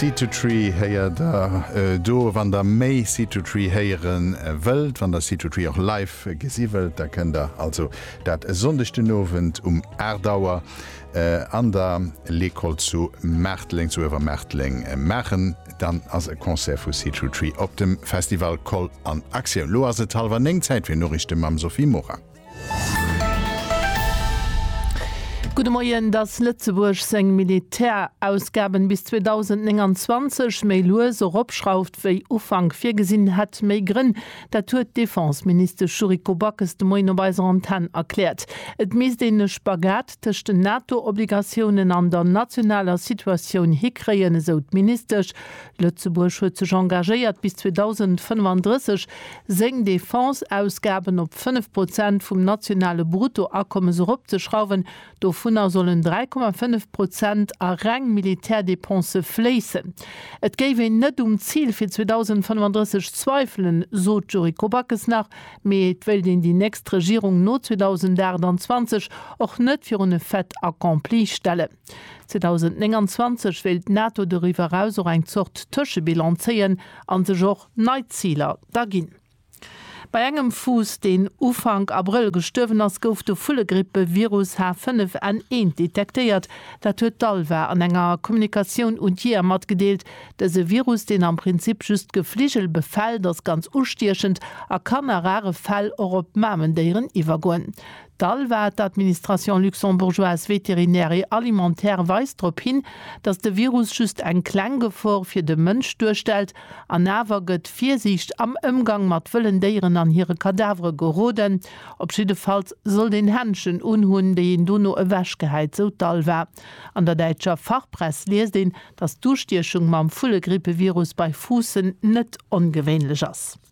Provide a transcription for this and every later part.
Seed to Tree héiert der do. Wann der méi Seed to Tree héiere wëllt, wann der Seed to Tree och live gesi wëllt, da kënnt der also dat e Sonndeg den Owend um 8 Auer an der Lekol zu Maarteleng, zu Uewermaarteleng maachen. Dann ass e Concert vu Seed to Tree op dem Festival Koll an Aktioun. Elo ass et hallwer néng, Zäit fir Noriichte mam Sophie Morang. Gudde Moien, Dass Lëtzebuerg seng Militärausgaben bis 2029 méi lues eropschrauft wéi Ufank virgesinn, hätt méi Grënn. Dat huet d'Defenseministesch Yuriko Backes de Moien op eiser Antenn erkläert. Et misst een e Spagat tëscht den NATO-Obligatiounen an der nationaler Situatioun hikréien, esou d'Ministesch. Lëtzebuerg huet sech engagéiert, bis 2035 seng Defense-Ausgaben op 5 Prozent vum nationale Bruttoakommes eropzeschrauwen, dovunner sollen 3,5 Prozent a reng Militärdepensë fléissen. Et géif een net um Zil fir 2035 zweifelen, sot d'Yuriko Backes nach, mee et wéilt een déi nächst Regierung no 2028 och net virun e Fait accompli stellen. 2029 wéilt d'NATO doriwwer eraus och eng Zort Tëschebilan zéien a sech och nei Ziler da ginn. Bei engem Fuuss, deen Ufank Abrëll gestuerwen ass, gouf de Vullegrippe-Virus H5N1 detektéiert. Dat huet d'ALVA an enger Kommunikatioun un d'Jeeër matgedeelt. Dëse Virus, deen am Prinzip just Gefligel befält, ass ganz ustiechend a kann a rare Fäll och op Mamendéieren iwwergoen. D'ALVA, d'Administration luxembourgeoise vétérinaire et alimentaire, weist drop hin, datt de Virus just eng kleng Gefor fir de Mënsch duerstellt an awer gëtt Virsiicht am Ëmgang mat wëllen Déieren an hire Kadavere geroden. Op jiddefalls sollt een Händschen unhunn, déi een dono ewechgehäit, sou d'ALVA. An der däitscher Fachpress liest een, datt d'Ustiechung mam Vullegrippe-Virus bei Fuussen net ongewéinlech ass.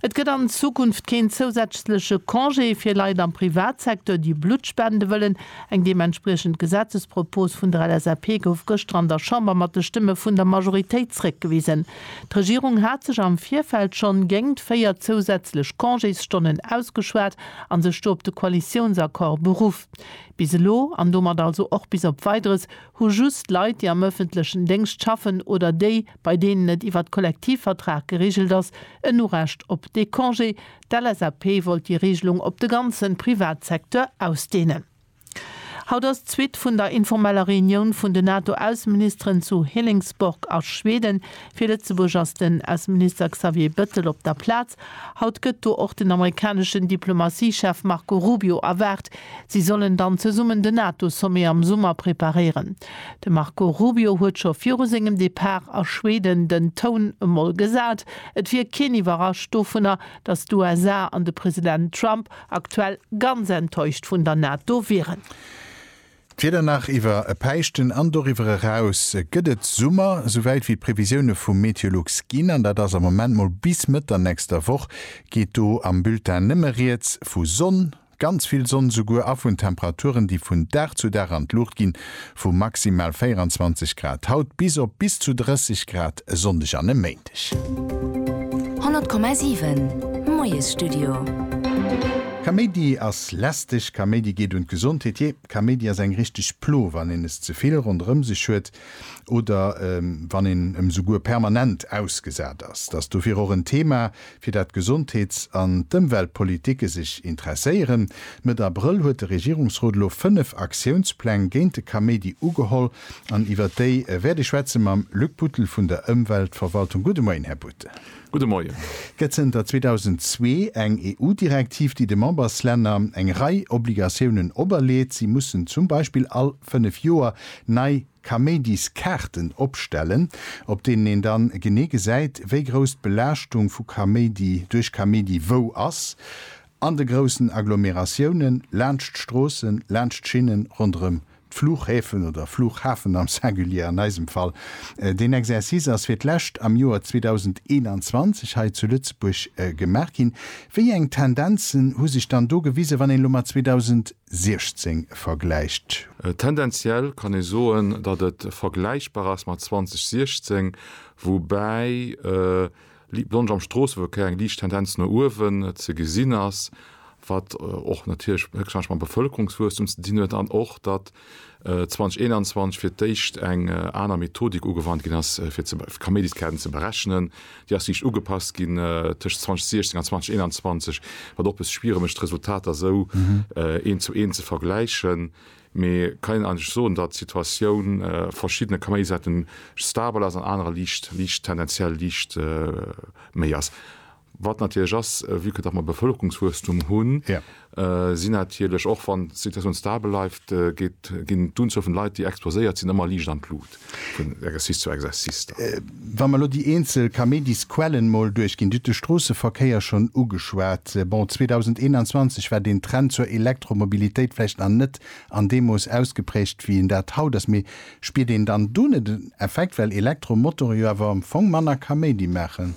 Et gëtt an Zukunft keen zousätzleche Congé fir Leit am Privatsecteur, déi Blutt spende wëllen. Eng deementspriechend Gesetzespropos vun der LSAP gouf gëschter an der Chamber mat de Stëmme vun der Majoritéit zréckgewisen. D'Regierung hat sech am Virfeld schonn géingt véier zousätzlech Congésstonnen ausgeschwat a sech do op de Koalitiounsaccord beruff. Bis elo, an domat also och bis op Weideres, hu just Leit, déi am ëffentlechen Déngscht schaffen oder déi, bei deenen et iwwert Kollektivvertrag geregelt ass, en Urecht op dee Congé. D'LSAP wollt déi Regelung op de ganze Privatsecteur ausdehnen. Haut ass d'Suite vun der informeller Reunioun vun den NATO-Ausseministeren zu Hilingsborg a Schweden. Fir Lëtzebuerg ass den Ausseminister Xavier Bettel op der Plaz. Haut gëtt do och den amerikaneschen Diplomatiechef Marco Rubio erwaart. Si sollen dann zesummen den NATO-Sommet am Summer preparéieren. De Marco Rubio huet scho viru sengem Depart a Schweden den Toun emol gesat, et wier keen iwwerrascht dovunner, datt d'USA an de President Trump aktuell ganz enttäuscht vun der NATO wieren. D'Wieder nach iwwer e Päischten an doriwwer eraus gëtt et Summer, souwäit wéi d'Previsioune vu Meteolux ginn, an dat ass am Moment mol bis Mëtt der nächster Woch, geet do am Bulletin nëmme rieds vu Sonn. Ganz vill Sonn souguer a vun Temperaturen, déi vun Dag zu Dag an d'Luucht ginn, vu maximal 24 Grad haut bis op bis zu 30 Grad e Sonndeg an e Méindeg. 100,7 Moiesstudio. Kaméidi ass lästeg, Kaméidi geet un d'Gesondheet, jee, Kaméidi ass eng richteg Plo, wann een es ze vill ronderëm sech huet oder wann een em souguer permanent ausgesat ass. Dass dofir och en Thema fir dat d'Gesondheets an d'Ëmweltpolitike sech interesséieren. Mëtt Abrëll huet de Regierungsrot elo fënnef Aktiounspläng géint de Kaméidi ugeholl an iwwert déi wäert ee schwätze mam Luc Buttel vun der Ëmweltverwaltung. Gudde Moien, Här Buttel. Gudde Moien. Et gëtt zënter 2002 eng EU-Direktiv, déi de Memberslänner eng Rei Obligatiounen operleet. Si mussen zum Beispill all fënnef Joer nei Kaméidiskaarten opstellen, op deenen een dann genee gesäit, wéi grouss d'Belaaschtung vu Kaméidi duerch Kaméidi wou ass, an de groussen Agglomeratiounen, laanscht d'Stroossen, laanscht d'Schinnen, ronderëm d'Flughäfen oder Flughafen am Singulier an eisem Fall. Deen Exercice ass fir d'lescht am Joer 2021 hei zu Lëtzebuerg gemaach ginn. Wéi eng Tendenzen hu sech dann do gewisen, wann een elo mat 2000. 2016 vergläicht. Tendenziell kann ee soen, datt et vergläichbar ass mat 2016, woubäi Liblonge am Stroosseverkéier eng liicht Tendenz no uewen ze gesinn ass, wat och natierlech héchstwahrscheinlech mam Bevëlkerungswuesstum ze dinn huet an och, datt 2021 fir d'éischt eng aner Methodik ugewannt ginn ass, fir d'Kaméidiskäerten ze berechnen. Déi ass liicht ugepasst ginn tëscht 2016 an 2021, wat och e bësse schwiere mécht, d'Resultater esou eent zu eent ze vergläichen. Mee kann een eigentlech soen, datt d'Situatioun a verschiddene Kaméidisaarten stabel ass, an anerer liicht, tendenziell liicht méi ass. Wat natierlech ass, vue que datt mer Bevëlkerungswuesstum hunn, sinn natierlech, och wann d'Situatioun stabel bleift, geet, ginn d'Unzuel vun Leit, déi exposéiert sinn, ëmmer liicht an d'Lut vun Exercice zu Exercice da. Wa mer elo déi eenzel Camedis-Quellen mol duerchginn, Dir hutt de Stroosseverkéier schonn ugeschwat. Bon, 2021 war deen Trend zur Elektromobilitéit vläicht nach net an deem Mooss ausgeprägt, wéi en dat haut ass. Mee spiert een dann do net en Effekt, well Elektromotorë jo awer am Fong manner Camedi maachen?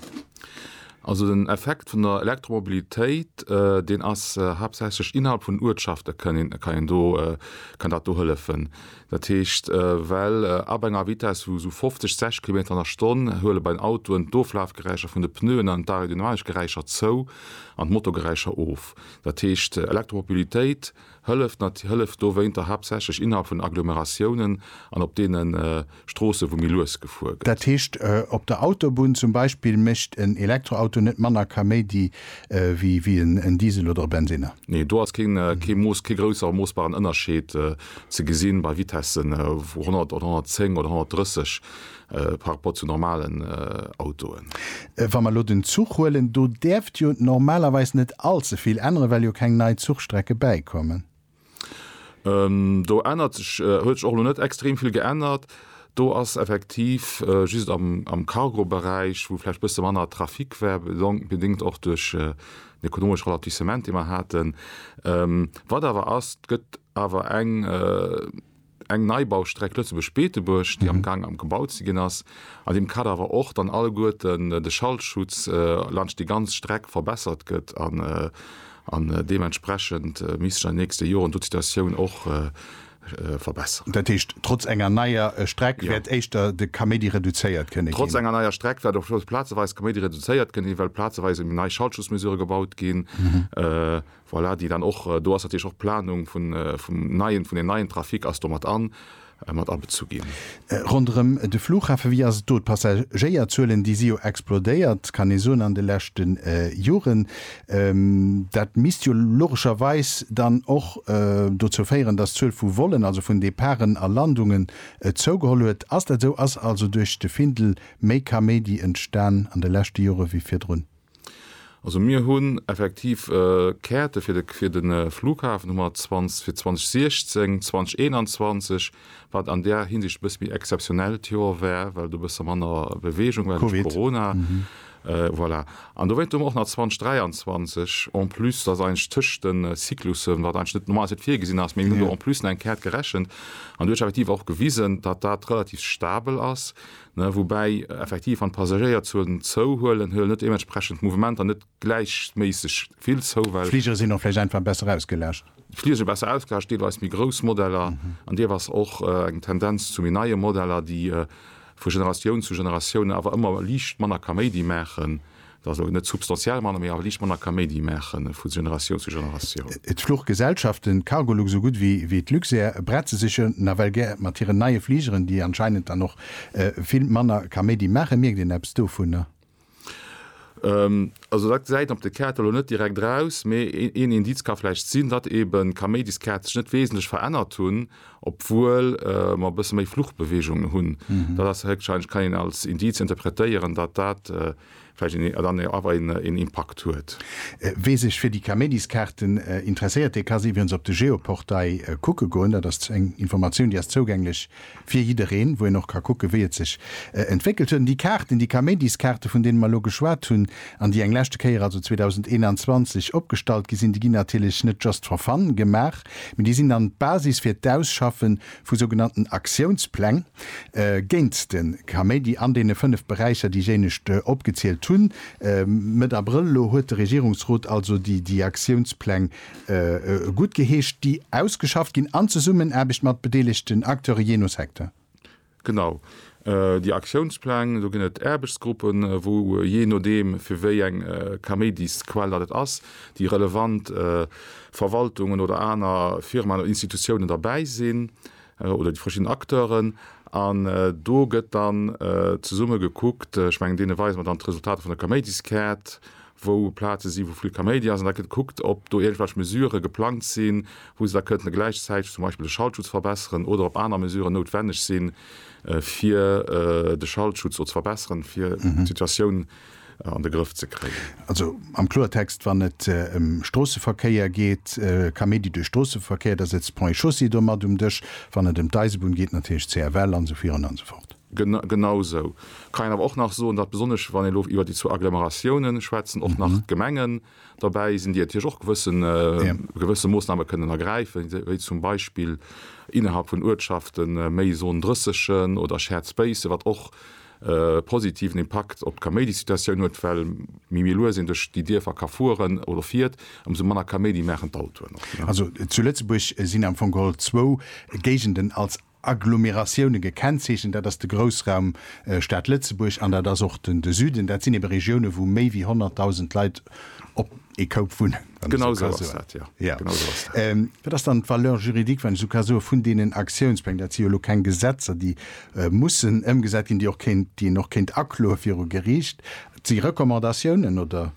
Also den Effekt vun der Elektromobilitéit, deen ass haaptsächlech innerhalb vun Uertschafte kann een, kann een do, kann dat do hëllefen. Dat heescht, well ab enger Vitess vu esou 50, 60 Kilometer an der Stonn huele bei den Autoen d'Oflafgeräischer vun de Pneuen an d'Aerodynamikgeräischer zou an d'Motorgeräischer of. Dat heescht, Elektromobilitéit Hëlleft hëlleft dowéinter haaptsächlech innerhalb vun Agglomeratiounen an op deene Stroosse wou méi lues gefuer gëtt. Dat heescht op der Autobunn zum Beispill mécht en Elektroauto net manner Kaméidi wéi en Diesel oder e Bensinner? Nee, do ass kee Mooss, kee grousser moossbaren Ënnerscheed ze gesinn bei Vitessen vu 100 oder 110 oder 130. par rapport zu normalen Autoen. Wa mer elo den Zuch huelen, do däerft jo normalerweis net allze vill änneren, well jo keng nei Zuchstrecke bäikommen. Do ännert sech, huet sech och elo net extrem vill geännert. Do ass effektiv just am Cargoberäich, wou vläicht e bësse manner Trafic war, bedéngt och duerch den ekonomesche Ralentissement, dee mer haten. Wat awer ass, et gëtt awer eng eng Neibaustreck Lëtzebuerg-Beetebuerg, déi am Gaang am gebaut ze ginn ass, an deem Kader awer och dann alleguerten de Schallschutz laanscht déi ganz Streck verbessert gëtt an deementsprechend misst sech an den nächste Joren do d'Situatioun och verbessern. Dat heescht, trotz enger neier Streck wäert éischter de Kaméidi reduzéiert kënne ginn? Trotz enger neier Streck wäert och plazeweis de Kaméidi reduzéiert kënne ginn, well plazeweis eben nei Schallschutzmesurë gebaut ginn. Voilà, déi dann och do ass, natierlech och d'Planung vun, vum neien, vun den neien Trafic ass do mat an, mat abezu ginn. Ronderëm de Flughafen, wéi ass et do? D'Passagéierzuelen, déi si jo explodéiert, kann ee soen, an de leschte Joren. Dat misst jo logescherweis dann och dozou féieren, dass d'Zuel vu Vollen, also vun Departen a Landungen, zougeholl huet. Ass dat esou? Ass also duerch de Findel méi Kaméidi entstan an de leschte Jore wéi virdrun? Also mir hunn effektiv Käerte fir de Flughafen hu mer zwanzeg fir 2016, 2021, wat an där Hinsicht e bësse méi exzeptionell d'Joer war, well do e bësse manner Beweegung war duerch Corona. Voilà. An dowéinst hu mer och nach 2023 en plus, dat ass eigentlech tëscht de Cyclussen, wat eigentlech net normalerweis net virgesinn ass, mee mir hunn do en plus nach eng Käert gerechent. An déi huet effektiv och gewisen, datt dat relativ stabel ass, Woubäi effektiv, wann d'Passagéierzuelen zouhuelen, huelen net deementsprechend d'Mouvementer net gläichméisseg vill zou, well. D'Fligere sinn och vläicht einfach besser ausgelascht. D'Fligere si besser ausgelascht, deelweis méi grouss Modeller an deelweis och eng Tendenz zu méi neie Modeller, déi vu Generatioun zu Generatioun awer ëmmer liicht manner Kaméidi maachen, Also net substantiell manner, mee awer liicht manner Kaméidi maache vu Generatioun zu Generatioun. D'Fluchgesellschaften Cargolux esou gutt wéi d'Luxair bretze sech jo nawell gär mat hiren neie Fligeren, déi anscheinend dann och vill manner Kaméidi maachen. Mierkt een eppes dovunner? Also dat gesäit een op de Kaarte lo net direkt eraus, mee een Indiz ka vläicht sinn, datt eeben d'Kaméidiskaart sech net wesentlech verännert hunn, obwuel mer e bësse méi Fluchbeweegunge hunn. Dat ass héchstwahrscheinlech, kann een als Indiz interpretéieren, datt dat vläicht een dann awer een Impakt huet. Wee sech fir déi Kaméidis-Kaarten interesséiert, dee ka se iwwerens op de Geoportail kucke goen. Dat ass eng Informatioun, déi ass zougänglech fir jiddereen, wou een och ka kucken, wéi et sech entwéckelt huet. An déi Kaarten, déi Kaméidis-Kaarten, vun deene mer elo geschwat hunn an déi eng leschte Kéier, also 2021, opgestallt gi sinn, déi ginn natierlech net just for fun gemaach, mee déi sinn dann d'Basis fir d'Ausschaffe vu sougenannten Aktiounspläng géint de Kaméidi an deene fënnef Beräicher, déi ech éinescht opgezielt hunn. Mëtt Abrëll elo huet de Regierungsrot also déi Aktiounspläng guttgeheescht, déi ausgeschafft ginn an Zesummenaarbecht mat bedeelegten Acteure jee no Secteur. Genau. Déi Aktiounspläng, do ginn et Aarbechtsgruppen, wou jee nodeem fir wéi eng Kaméidisquell datt et ass, déi relevant Verwaltungen oder aner Firmaen oder Institutiounen derbäi sinn oder déi verschidden Acteuren. An do gëtt dann zesumme gekuckt, ech mengen deene weise mer dann d'Resultater vun der Kaméidiskäert, wou Plaze sinn, wou vill Kaméidi ass, an da gëtt gekuckt, ob do iergendwelch Mesüre geplangt sinn, wou se da kënnte gläichzäiteg zum Beispill de Schallschutz verbesseren oder ob aner Mesüren noutwenneg sinn, fir de Schallschutz do ze verbesseren, fir d'Situatioun an de Grëff ze kréien. Also am Kloertext, wann et ëm Stroosseverkéier geet, Kaméidi duerch Stroosseverkéier, da sëtzt d'Ponts et Chaussées do mat um Dësch, wann et ëm d'Eisebunn geet, natierlech d'CFL an esou virun an esou fort. Genau esou. Kann een awer och nach soen, datt besonnesch wann een elo iwwer déi zwou Agglomeratiounen schwätzen, och nach Gemengen derbäi sinn, déi natierlech och gewësse Moossname kënnen ergräifen, wéi zum Beispill innerhalb vun Uertschafte méi Zone 30 oder Shared Spacen, wat och e positiven Impakt op d'Kaméidisituatioun huet, well méi méi lues een duerch déi Dierfer ka fueren oder fiert, ëmsou manner Kaméidi maachen d'Autoen och. Also zu Lëtzebuerg sinn am Fong geholl zwou Géigenden als Agglomeratioune gekennzeechent. Dat ass de Groussraum Stad Lëtzebuerg an dat ass och de Süden. Dat sinn ebe Regiounen, wou méi wéi 100.000 Leit op ee Koup wunnen, wann ech esou ka soen. Wat ass dann d'Valeur juridique, wann ech esou ka soen, vun deenen Aktiounspläng? Dat si jo elo keng Gesetzer, déi mussen ëmgesat ginn, déi och kéint, déi een och kéint akloe viru Geriicht. Et si Recommandatiounen, oder?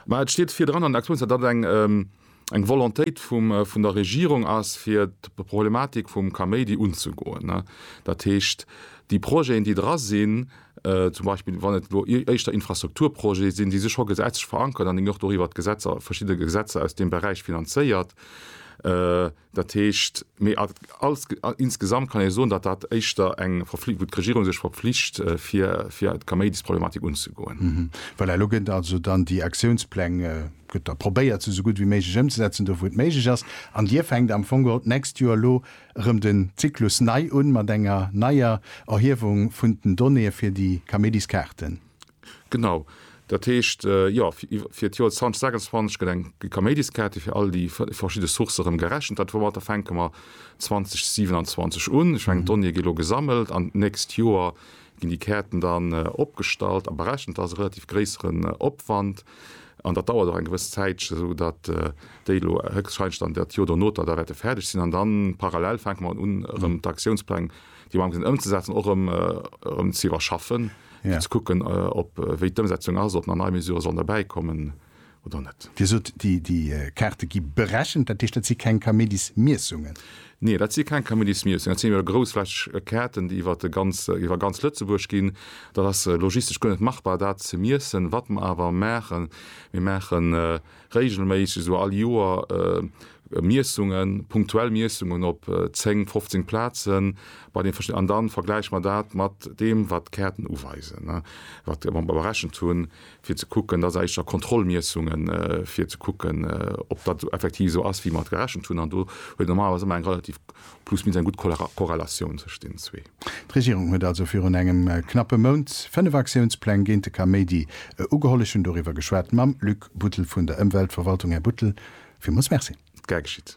Mä et steet virdran an den Aktiounspläng, datt et eng, Eng Volontéit vun der Regierung ass, fir d'Problematik vum Kaméidi unzegoen. Dat heescht, déi Projeten, déi dra sinn, zum Beispill wann et elo éischter Infrastrukturprojete sinn, déi si scho gesetzlech verankert an déi mir och doriwwer d'Gesetzer, verschidde Gesetzer aus deem Beräich finanzéiert. Dat heescht, mee. Als insgesamt kann ee soen, datt dat éischter eng Verfli wou d'Regierung sech verpflicht, fir fir d'Kaméidisproblematik unzegoen. Voilà, elo gëtt also dann déi Aktiounspläng, gëtt da probéiert, se esou gutt wéi méiglech ëmzesetzen, do wou et méiglech ass. An Dir fänkt am Fong geholl d'nächst Joer elo erëm den Zyklus nei un, mat enger neier Erhiewung vun den Donnéeë fir déi Kaméidiskaarten. Genau, dat heescht, jo, fir d'Joer 2026 gëtt eng Kaméidiskäerti fir all déi verschidde Sourcë erëm gerechent. Dat Format, da fänke mer 2027 un. Ech mengen, d'Donnéeë gi lo gesammelt an d'nächst Joer ginn déi Käerten dann opgestallt a berechent. Dat ass e relativ gréisseren Opwand an dat dauert och eng gewëss Zäitche, esou datt déi elo héchstwahrscheinlech dann dat Joer donoter da wäerte fäerdeg sinn. An da parallel fänke mer un, erëm d'Aktiounspläng déi am Gaang sinn ëmzesetzen, och erëm ze iwwerschaffen, fir ze kucken, ob wéi d'Ëmsetzung ass, ob nach nei Mesurë sollen derbäikommen oder net. Dir sot, déi Kaarte gi berechent, dat heescht, dat si keng Kaméidismiessungen? Nee, dat si keng Kaméidismiessungen. Dat sinn jo groussflächeg Kaarten, déi iwwer ganz Lëtzebuerg ginn. Dat ass logistesch guer net machbar, dat ze miessen. Wat mer awer maachen, Mir maachen Réigelméisseg, esou all Joer, Miessungen, punktuell Miessungen op 10, 15 Plazen bei den verschiddenen, an dann vergläiche mer dat mat deem, wat d'Käerten uweisen, wat mer berechent hunn, fir ze kucken, dat éischter Kontrollmiessungen, fir ze kucken, ob dat effektiv esou ass, wéi mer et gerechent hunn. An do huet normalerweis ëmmer eng relativ Plus minus eng gutt Korrelatioun tëscht deenen zwee. D'Regierung huet also virun engem knappe Mount fënnef Aktiounspläng géint de Kaméidi ugeholl. Ech hunn doriwwer geschwat mam Luc Buttel vun der Ëmweltverwaltung. Här Buttel, villmools Merci. Gär geschitt.